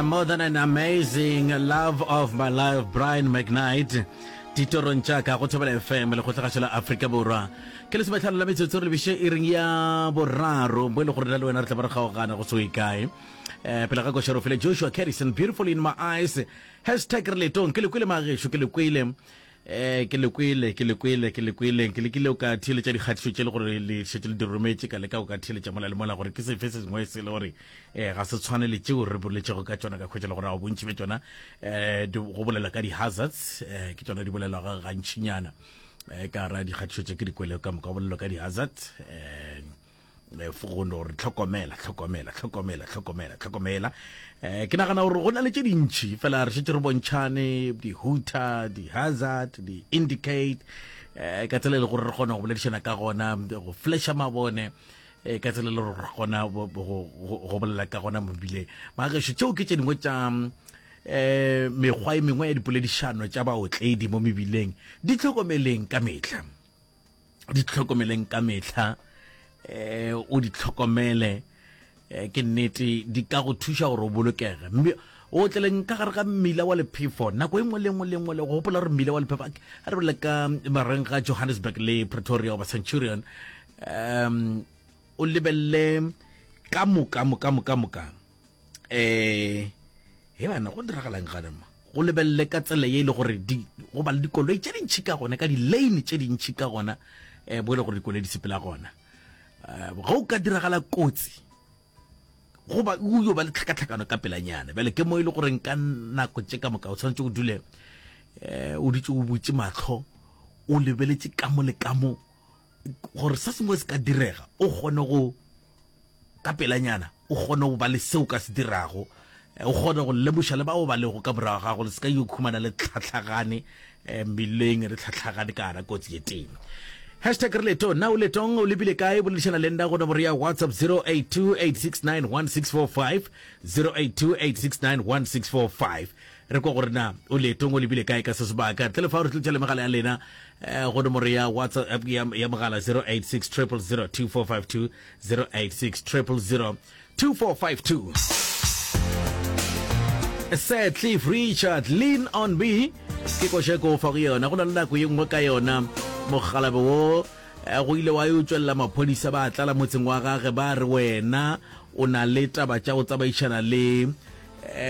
More than an amazing love of my life Brian McKnight ditorong tša ka go thobela fm le kgotlagašo la afrika borwa ke le sometlhano la metsotso re lebiše e reng ya boraro bo e le gore na le wena re tla ba re kgaogana go soe kae um pele ga košero fele joshua carrison beautiful in my eyes hashtag re letong ke le kwele magešu ke le kwele Ee, ke le kwele, ke le kwele, ke le kwele. Ke lekile go ka theeletša dikgatišo tše le gore le šetše le di rometše, ka leka go ka theeletša mola le mola gore ke sefe se sengwe se le gore um ga se tshwane le tšeo re boletšego ka tšona, ka hwetša le gore ao bontši bja tšona um go bolela ka di-hazards, um ke tšona di bolelwago gantšinyana um ka ra dikgatišo tše ke di kwelego ka moka, go bolelwa ka di-hazard um Eh, fogono gore tlhokomela tlhokomela tlhokomela tlhokomela tlhokomela um ke nagana gore go na le tše dintšhi fela re šetse re bontšhane di-hooter di-hazard di-indicate um ka tsela e le gore re kgona go boledišana ka gona go flasha mabone um ka tsela e le gore re kgona go bolela ka gona mobile magešo tšeo ke tše dingwe tša um mekgwa e mengwe ya dipoledišano tša baotledi mo mebileng di tlhokomeleng ka metlha di tlhokomeleng ka mehla eh o di tlhokomele eh, ke nnete di ka go thuša gore o bolokege mme o tleleng ka gare ga mmila wa lephefo nako e nngwe le nngwe le nngwe le go gopola gore mmila wa lephefo a re bole ka mareng ga johannesburg le pretoria oba centurion um o lebelele ka moka moka moka moka eh he bana go diragalang gane ma go lebelele ka tsela ye e le gore go ba le dikoloi tše dintšhi ka gona ka di-lane tše dintšhi ka gona um bo e le gore dikoloi di sepela gona um ga o ka diragala kotsi goba o yo ba le tlhakatlhakano ka pelanyana bjale ke mo e le goreng ka nako tše ka moka o tshwanetse o dule um o ditse o butse matlho o lebeletse ka mo le ka mo gore se sengwe se ka direga o kgone go ka pelanyana o kgone go ba le seo ka se dirago eh, o kgone go lemoša le bao ba lego ka morago gago le se ka yo khumana le tlhatlhagane eh, mmileng re tlhatlhagane ka ara kotsi ye teng hashtag re letong na o letong o lebile kae boledišana le nna go nomoro ya whatsapp 0828691645 0828691645 Re kwa gore na o leetong, o lebile kae ka se sebaka. Ntle le fao, re tletša le megala ya lena eh, go nomoro ya WhatsApp ya, ya mogala 086 000 2452 086 000 2452. Sir Cliff Richard, lean on me ke koša ko fa go yona go na le nako ye nngwe ka yona mogalabe wo eh, go ile wa yo tšwelela maphodisa ba tlala motseng wa gage ba re wena o na le taba tša go tsamaišana le eh,